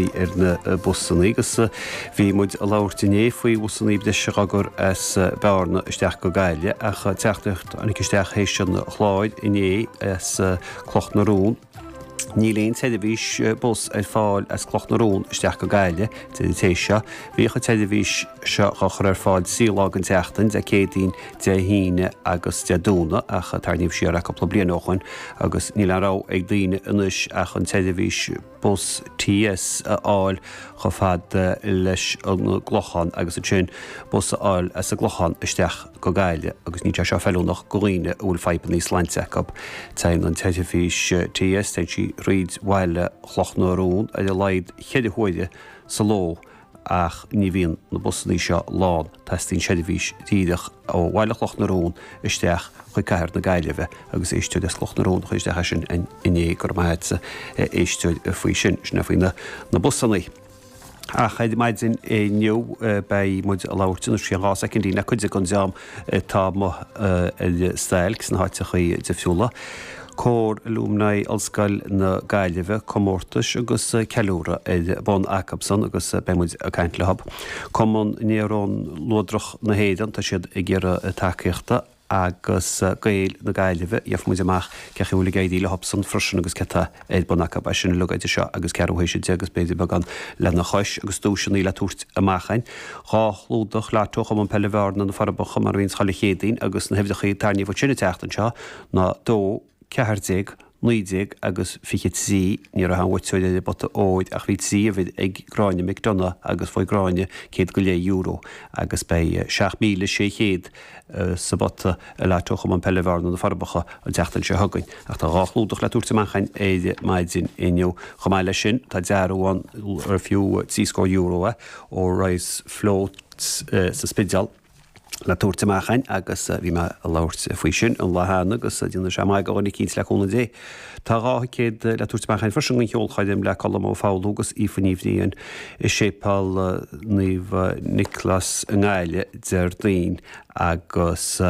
ar na busannaí agus bhí muid a labhairt inné faoi bhusannaí breise a chur as Bearna isteach go Gaille ach teachtaireacht isteach théis an chláir inné as Cloch na Rón. Níl aon tseirbhís bus ar fáil as Cloch na Rón isteach go Gaille díreach. Bhíodh an tseirbhís seo á chur ar fáil trí lá den tseachtain, Dé Céadaoin, Dé hAoine agus Dé Domhnaigh ach tarraingíodh siar é cúpla bliain ó shoin agus níl aon rogha ag daoine anois ach an tseirbhís bus TS a fháil chomh fada leis an gClochán agus ansin bus a fháil as an gClochán isteach go Gaillimh agus níl sé seo feiliúnach go dhaoine a bhfuil fadhbanna sláinte acu. Téann an tseirbhís TS, téann sí thríd bhaile Chloch na Rón ar a laghad cheithre huaire sa ló ach ní bhíonn na busannaí seo lán, teastaíonn seirbhís díreach ó bhaile Chloch na Rón isteach chuig cathair na Gaillimhe agus éisteoir as Cloch na Rón a chuir isteach é sin inné, go raibh maith a't a éisteoir faoi sin. Sin é faoi na busannaí. Ach ar maidin inniu beidh muid ag labhairt, anois i gceann dhá soicind, le cuid den dream atá amuigh ar stailc sna háiteachaí difriúla, Cór Alumni, Ollscoil na Gaillimhe, comórtais agus ceiliúradh ar bun acub san agus beidh muid ag caint leob Cumann Néarón Luadrach na hÉireann, tá siad ag iarraidh tacaíochta, agus Gaeil na Gaillimhe, gheofar muid amach cén chaoi a bhfuil ag éirí leob san freisin agus céard atá ar bun acub. É sin uilig idir seo agus ceathrú théis a deich agus b'fhéidir beagán lena chois agus duaiseanna le tabhairt amach ann. Dhá chlúdach lotto ó Chumann Peile Bhearna, Na Forbacha mar a bhíonns chuile Chéadaoin agus na huimhreacha a tarraingíodh ansin an tseachtain seo ná dó, ceathair déag, naoi déag agus fiche trí. Ní raibh aon bhuaiteoir ar an bpota óir ach bhí trí uimhir ag Gráinne McDonagh agus fuair Gráinne céad go leith euro agus beidh seacht míle sé chéad, sa bpota i lotto Chumann Peile Bhearna, Na Forbacha, an tseachtain seo chugainn. Ach tá dhá chlúdach le tabhairt amach a'inn ar maidin inniu. Chomh maith leis sin, tá dearbhán ar fiú trí scór euro é, ó Rise Float sa Spidéal, le tabhairt amach agus bhí mé ag labhairt faoi sin an lá cheana agus déanfaidh sé maitheas do dhuine eicínt, le cúnamh Dé. Tá dhá thicéad le tabhairt amach freisin don cheolchoirm le Colm Ó Foghlú agus Aoife Ní Bhriain i Séipeal Naomh Nioclás i nGaillimh Déardaoin agus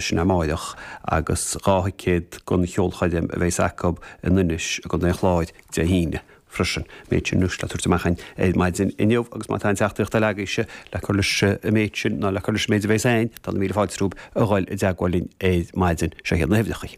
sin amárach agus dhá thicéad don cheolchoirm a bheas acu in Inis i gContae an Chláir Dé hAoine freisin. An méid sin anois le tabhairt amach ar maidin inniu agus má tá aon teachtaireacht uilig agaibhse le cur leis an méid sin nó le cur leis an méid a bheas ann, tá na míle fáilte romhaibh a dhul i dteagmháil linn ar maidin. Seo hiad na huimhreacha.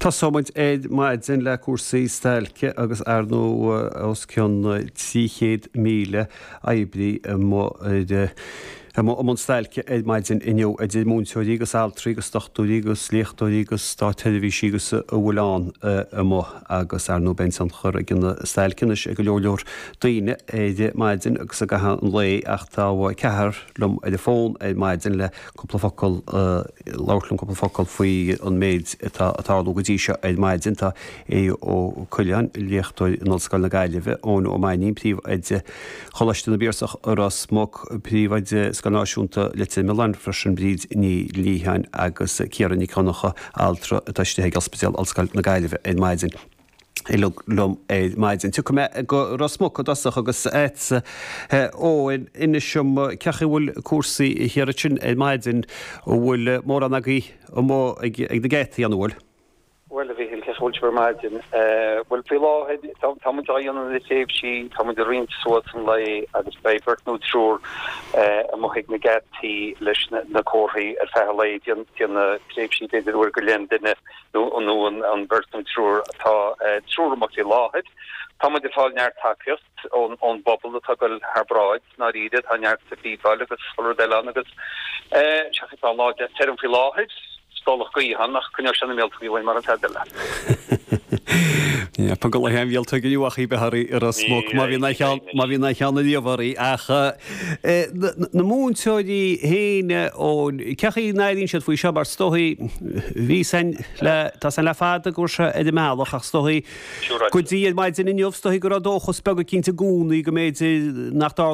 Tosóimid ar maidin le cúrsaí stailce agus ar ndóigh os cionn 300,000 oibrí amuigh i mbun stailce ar maidin inniu, idir múinteoirí agus altraí agus dochtúirí agus léachtóirí agus státsheirbhísigh agus a bhfuil ann amuigh agus ar ndóigh beidh tionchar ag an stailc anois ag go leor leor daoine ar maidin agus i gcaitheamh an lae ach tá ceathrar liom ar an bhfón ar maidin le cúpla focal a labhairt liom cúpla focal faoi an méid atá ag tarlú go dtí seo ar maidin. Tá Aodh Ó Coileáin, léachtóir in Ollscoil na Gaillimhe, Eoin Ó Mainnín, príomhoide Choláiste na bPiarsach i Ros Muc, príomhoide Scoil Náisiúnta Leitir Mealláin freisin, Bríd Ní Liatháin agus Ciara Nic Dhonnacha, altra atá istigh ag Ospidéal Ollscoile na Gaillimhe ar maidin. Uilig liom ar maidin. Tiocfaidh mé go Ros Muc i dtosach agus agat Eoin, inis dom cén chaoi a bhfuil cúrsaí thiar ansin ar maidin, an bhfuil mórán agaibh amuigh ag na geataí, an bhfuil? Bhuel, a Mhichíl, cén chaoi a bhfuil sibh ar maidin? Bhuel, faoi láthair, tá muid á dhéanamh le tréimhsí, tá muid ag roinnt suas an lae agus beidh beirt nó triúr amuigh ag na geataí leis na comharthaí ar feadh an lae, ag déanamh tréimhsí b'fhéidir uair go leith an duine. nó an bheirt nó an triúr tá triúr amuigh faoi láthair. Tá muid ag fáil neart tacaíocht ón bpobal atá ag goil thar bráid, i ndáiríre. Tá neart séabáil agus chuile rud eile ann agus tá an lá deas tirim faoi láthair, stolladh gaoth ann ach coinneoidh sé na míoltógaí uainn mar a déarfadh an ceann eile. Yep, an gulaithe an mhíoltóg inniu ach í bheith ar smoke má bhíonn a cheann a líomhar í ach. Na múinteoirí féin, cén chaoi a n-airíonn siad faoi seo mar is dóigh, bhí sin le, tá sin le fada go raibh sé ar an mbealach ach is dóigh go dtí ar maidin inniu is dóigh go raibh dóchas beag eicínt i gcónaí go mb'fhéidir nach dtarlódh